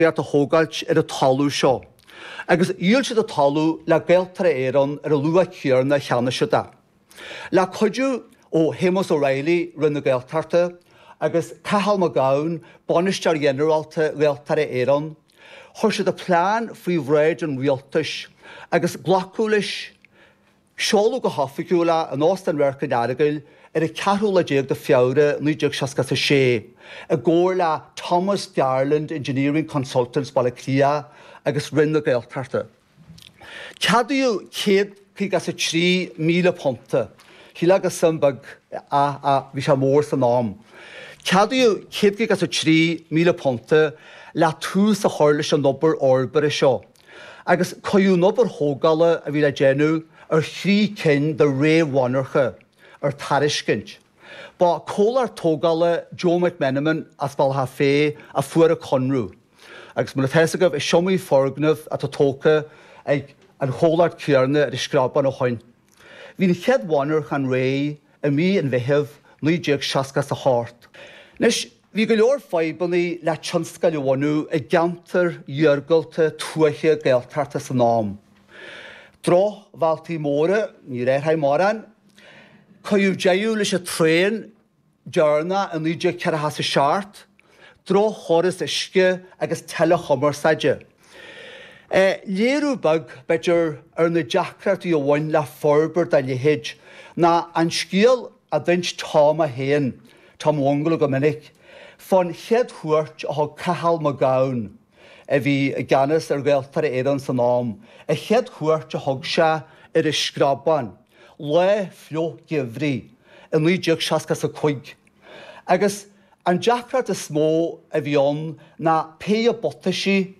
beart a thógáilt ar an talamh seo, agus dhíol siad an talamh le Gaeltarra Éireann ar an luach céarna a cheannaigh siad é. Le cuidiú ó Shéamus Ó Raghallaigh, Roinn na Gaeltachta, agus Cathal Mac Gabhann, Bainisteoir Ghinearálta Ghaeltarra Éireann, chuir siad an plean faoi bhráid an Rialtais, agus glacadh leis. Seoladh go hoifigiúil é in Óstán Radharc an Earagail ar an ceathrú lá déag de Feabhra 1966, i gcomhar le Thomas Garland Engineering Consultants Bhaile Átha Cliath agus Roinn na Gaeltachta. Ceadaíodh céad caoga is a trí míle punt. Shílfeá go suim beag é, ach bhí sé mór san am. Ceadaíodh céad caoga is a trí míle punt le tús a chur leis an obair fhorbartha seo. agus cuireadh an obair thógála a bhí le déanamh ar thrí cinn de réamh-mhonarcha ar tairiscint. Ba comhlacht tógála Joe McMenamin as Bealach Féich a fuair an conradh agus mar atá fhios agaibh is iomaí foirgneamh atá tógtha ag an chomhlacht céarna ar an Screabán ó shoin. Bhí an chéad mhonarchan réidh i mí an Mheithimh 1968. Anois, bhí go leor fadhbanna le tionscail a bhunú i gceantair iargulta tuaithe Gaeltachta san am. Drochbhealtaí móra, níor athraigh mórán, cuireadh deireadh leis an traen, deireanach i 1947, droch-chóras uisce agus teileachumarsáide. Léiriú beag, b'fhéidir, ar na deacrachtaí a bhain le forbairt dá leithéid ná an scéal a d'ins Tom é féin, Tom Mhunghaile go minic, fán chéad chuairt a thug Cathal Mac Gabhann, a bhí i gceannas ar Ghaeltarra Éireann san am, a chéad chuairt a thug sé ar an Screabán, lá fliuch geimhridh i 1965, agus an deacracht is mó a bhí ann ná péire buataisí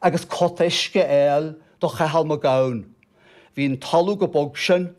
agus cóta uisce a fháil do Chathal Mac Gabhann. Bhí an talamh chomh bog sin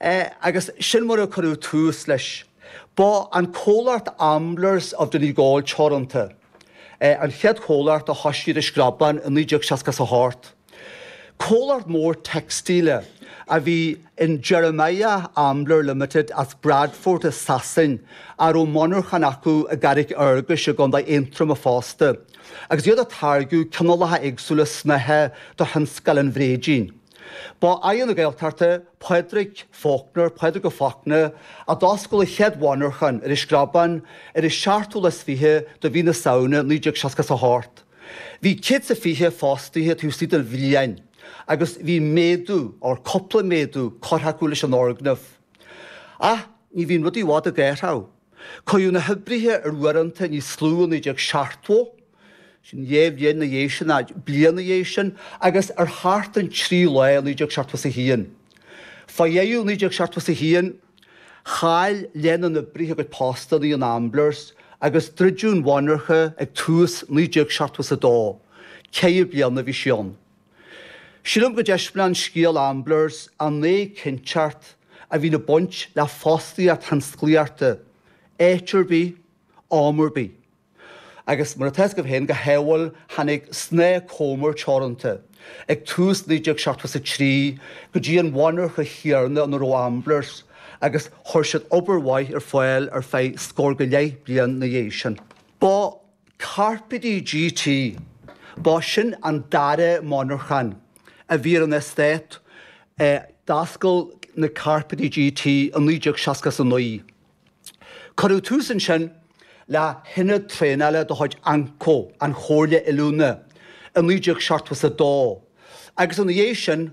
é, agus sin mar a cuireadh tús leis. Ba an comhlacht Amblers of Donegal Teoranta an chéad chomhlacht a thosaigh ar an Screabán i 1968. Comhlacht mór teicstíle a bhí in Jeremiah Ambler Limited as Bradford i Sasain, a raibh monarchan acu i gCarraig Fhearghais i gContae Aontroma fosta, agus iad ag táirgiú cineálacha éagsúla snáithe do thionscal an bhréidín. Ba é Aire na Gaeltachta, Pádraig Faulkner, Pádraig Ó Fachtna, a d'oscail an chéad mhonarchan ar an Screabán ar an 27ú de mhí na Samhna 1968. Bhí 120 fostaithe taobh istigh de bhliain agus bhí méadú, or cúpla méadú, curtha acu leis an fhoirgneamh. Ach ní bhíonn rudaí i bhfad ag athrú. Cuireadh na hoibrithe ar uaireanta níos lú i 1970, sin dhá bhliain ina dhiaidh sin, nó bliain ina dhiaidh sin, agus ar sheachtain trí lá i 1971. Fá dheireadh 1971, chaill leath na n-oibrithe a gcuid postanna in Amblers, agus druideadh an mhonarcha ag tús 1972. Ceithre bliana a bhí sí ann. Sílim go dtaispeánann scéal Amblers an éiginnteacht a bhíonn ag baint le fostaíocht thionsclaíochta, áit ar bith, am ar bith. Agus mar atá a fhios agaibh féin, go hádhúil, tháinig Snáth Comer Teoranta ag tús 1973 go dtí an mhonarcha chéanna ina raibh Amblers agus chuir siad obair mhaith ar fáil ar feadh scór go leith bliain ina dhiaidh sin. Ba Cairpéidí GT. Ba shin an dara monarchan a bhí ar an eastát. D'oscail na Cairpéidí GT i 1969. Cuireadh tús ansin le hionad traenála de chuid AnCO, An Chomhairle Oiliúna, i 1972 agus ina dhiaidh sin,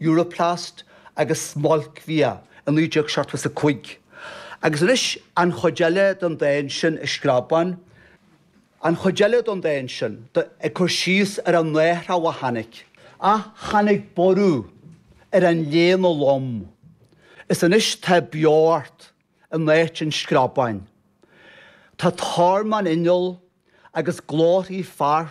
Europlast agus Smailcbhia i 1975, agus anois an chuid eile den dán sin An Screabán, an chuid eile den dán sin ag cur síos ar an athrú a tháinig. Ach tháinig borradh ar an léana lom, is anois tá beocht in áit an screabáin. Tá tormán inneall agus glórthaí fear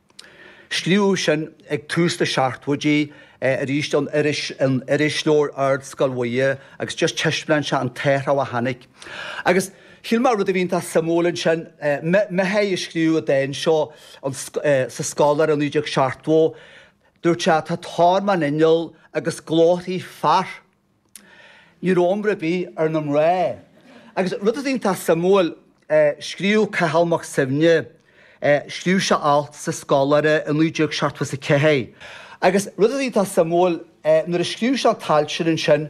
Scríobhadh sin ag tús na seachtóidí arís don irisleabhar Ardscoil Mhuire agus just taispeánann sé an t-athrú a tháinig. Agus shíl mé rud a bhí iontach suimiúil ansin, Mihai a scríobh an dán seo sa Scoláire 1970, dúirt sé tá tormán inneall agus glórthaí fear. Ní raibh iomrá ar bith ar na mná. Agus rud atá iontach suimiúil, scríobh Cathal Mac Suibhne, scríobh sé alt sa Scoláire i 1974, agus rud atá iontach suimiúil, nuair a scríobh sé an t-alt sin ansin,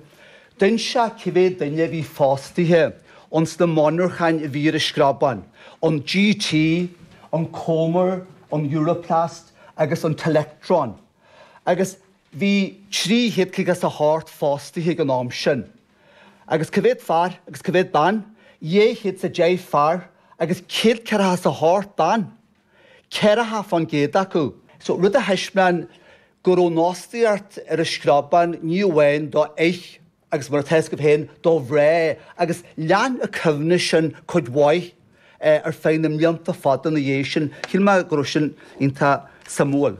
d'inis sé cé mhéad duine a bhí fostaithe ins na monarcháin a bhí ar an Screabán, an GT, an Comer, an Europlast agus an Telectron. Agus Bhí trí chéad caoga 's a hocht fostaithe ag an am sin, agus cá mhéad fear agus cá mhéad bean? Dhá chéad 's a deich fear agus céad ceathracha 's a hocht ban, ceathracha fán gcéad acu. So, rud a thaispeáin go raibh an fhostaíocht ar an Screabán, ní amháin do fhir agus mar atá a fhios agaibh féin, do mhná, agus lean an coibhneas sin cuid mhaith ar feadh na mblianta fada ina dhiaidh sin. Shíl mé go raibh sin iontach suimiúil.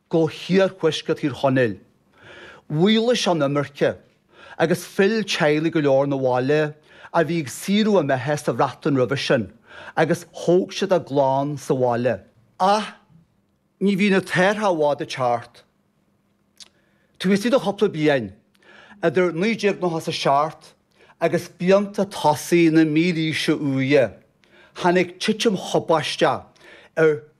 go hiarthuaisceart Thír Chonaill. Mhaolaigh an imirce agus phill teaghlaigh go leor 'na bhaile a bhí ag saothrú a mbeatha sa Bhreatain roimhe sin agus thóg siad a gclann sa bhaile. Ach ní bhíonn an t-athrú i bhfad ag teacht. Taobh istigh de chúpla bliain, idir 1997 agus blianta tosaigh na mílaoise úire, tháinig titim thubaisteach ar